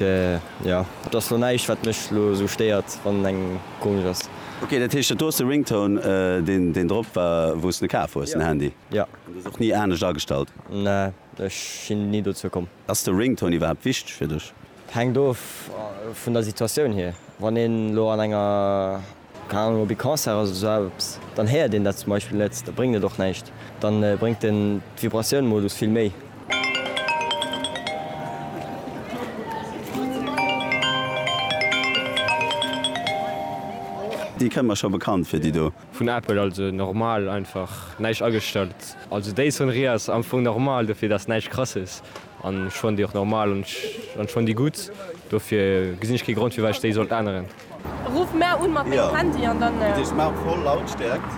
Jo, et ass lo näischt wat mech lo esou stéiert wann en engem komesch ass. Ok, dat heescht, do ass de Ringtone deen drop war wou s de kaf hues den Handy? Jo. An du hues och ni anescht agestallt? Ne, ech sinn ni dozou komm. Ass de Ringtone iwwerhaapt wichteg fir dech? Hänkt of vun der Situatioun hier, wann een lo an enger. Keng Ahnung, op ee Concert ass oder sou eppes, dann héiert een dat zum Beispill net, da bréngt et och näischt. Da bréngt den d'Vibratioun-Modus vill méi. Déi kënnt mer scho bekannt vir, déi do. Vun Apple, also normal, einfach näischt agestallt. Also déi Sonnerie ass am Fong normal, dofir dass näischt krasses an ech fannen déi och normal an ech fannen déi gutt, dofir gesinn ech kee Grond firwat ech déi sollt änneren. Ruff mär un mat mengem Handy an dann. Gëtt ee smart voll Lautstärkt.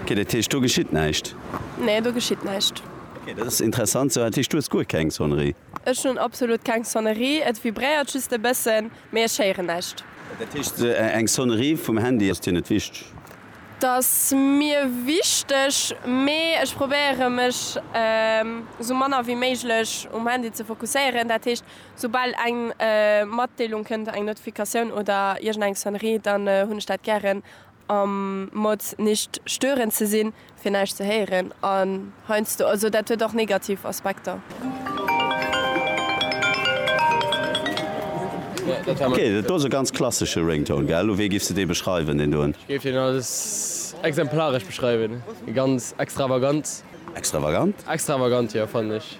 Ok, dat heescht do geschitt näischt? Nee, do geschitt näischt. Ok, dat ass interessant. Sou, dat heescht du hues guer keng Sonnerie? Ech hunn absolut keng Sonnerie. Et vibréiert just e bëssen, mee ech héieren näischt. Dat heescht, eng Sonnerie vum Handy ass dir net wichteg? T'ass mir wichteg, mee ech probéiere mech sou manner wéi méiglech um Handy ze fokusséieren. Dat heescht, Soubal eng Matdeelung kënnt, eng Notifikatioun oder iergend eng Sonnerie, dann hunn ech dat gären am Mode nicht stören ze sinn, fir näischt ze héieren an heiansdo, also dat huet och negativ Aspekter. Ok, dat do ass e ganz klassesche Ringtone, gell? Wéi giffs de dee beschreiwen, deen doen? Ech géif deen als exemplaresch beschreiwen, ganz extravagant. Extravagant? Extravagant, jo, fannen ech.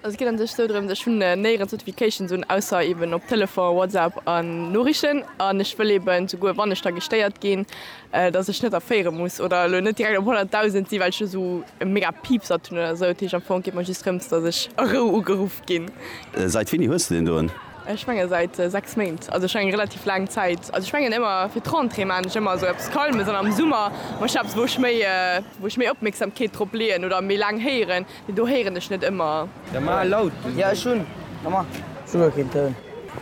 Also et geet an sech sou drëms, ech hunn néierens Notifications un, ausser eben op Telefon, WhatsApp an Noriichten an ech wëll eben souguer wann ech da gestéiert ginn, dass ech net erféiere muss oder elo net direkt op 100.000 sinn, well ech do sou e mega Piepsert hunn oder sou. Dat heescht am Fong geet mer just drëms, dass ech a Rou ugeruff ginn. Seit wéini hues de deen doen? Ech menge seit 6 Méint, also ech menge relativ laang Zäit. Also ech mengen ëmmer fir d'Rentrée maan ech ëmmer sou eppes Calmes an am Summer man ech eppes wou ech méi wou ech méi Opmierksamkeet drop leeën oder méi laang héieren. Do héieren ech net ëmmer. Da mar laut. Jo ech hun nommar souguer keen Toun.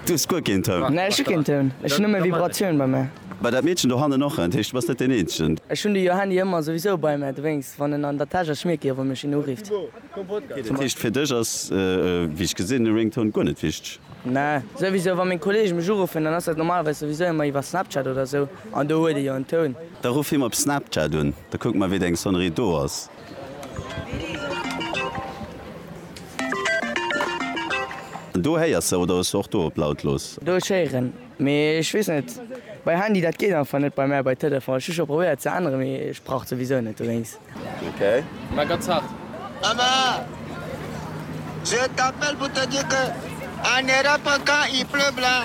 Du hues guer keen Toun? Nee ech hu keen Toun, ech hun nëmme Vibratioun bei mär. Bei dat Meedchen do hannen och? Dat heescht du bass net deen eenzegen. Ech hun de jo Handy ëmmer souwisou bei mär, dowéinst wann en an der Täsch ass schmierk ech wann mech een urifft. Dat heescht fir dech ass wéi ech gesinn e Ringtone guer net wichteg? Nee souwisou wann meng Kollege mech uruffen dann ass dat normalerweis souwisou ëmmer iwwer Snapchat oder sou an do huet e jo en Toun. Da ruff him op Snapchat un, da kucke mer wéi deng Sonnerie do ass. Do héiers de oder hues de och do op laut looss? Do ech héieren, mee ech wees net bei Handy dat geet einfach net bei mär bei Telefon. Ech hu scho probéiert ze änneren mee ech brauch souwisou net dowéinst. Mä ganz haart. Emma, je t'appelle pour te dire que en Europe quand il pleut blanc,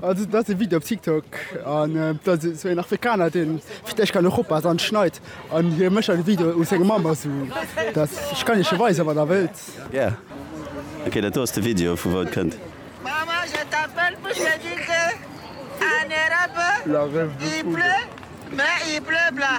Also dat ass e Video op TikTok an et ass esou een Afrikaner dee fir d'éischt kann Europa ass an schneit an hie mécht dann e Video u sengem Mamm esou dat ech kann iech e weisen wann der wëllt. Yeah ok dat do ass de Video vu wou et kënnt. Mama je t'appelle pour te dire que en Europe il pleut mais il pleut bla.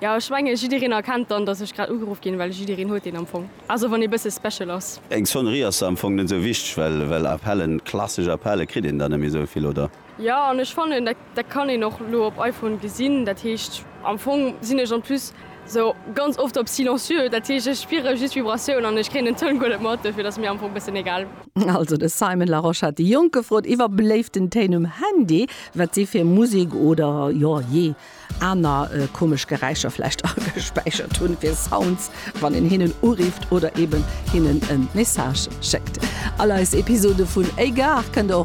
Ja ech menge jiddereen erkennt dann dass ech grad ugeruff ginn, well jiddereen huet een am Fong, also wann ee bësse special ass. Eng Sonnerie ass da am Fong net esou wichteg, well well Appellen, klassesch Appelle kritt een der net méi esou vill, oder? Jo an ech fannen dat dat kann een och elo op iPhone gesinn, dat heescht am Fong sinn ech en plus esou ganz oft op silencieux, dat heescht ech spiere just Vibratioun an ech kréien den Toun guer net mat, dofir et ass mir am Fong bëssen egal. Also de Simon Larosche hat déi Jonk gefrot iwwer beléiften Téin um Handy, wat si fir Musek oder jo jee aner komesch Geräischer vläicht agespäichert hunn fir Sounds, wann een hinnen urifft oder eben hinnen e Message schéckt. All eis Episode vun Égard kënnt der och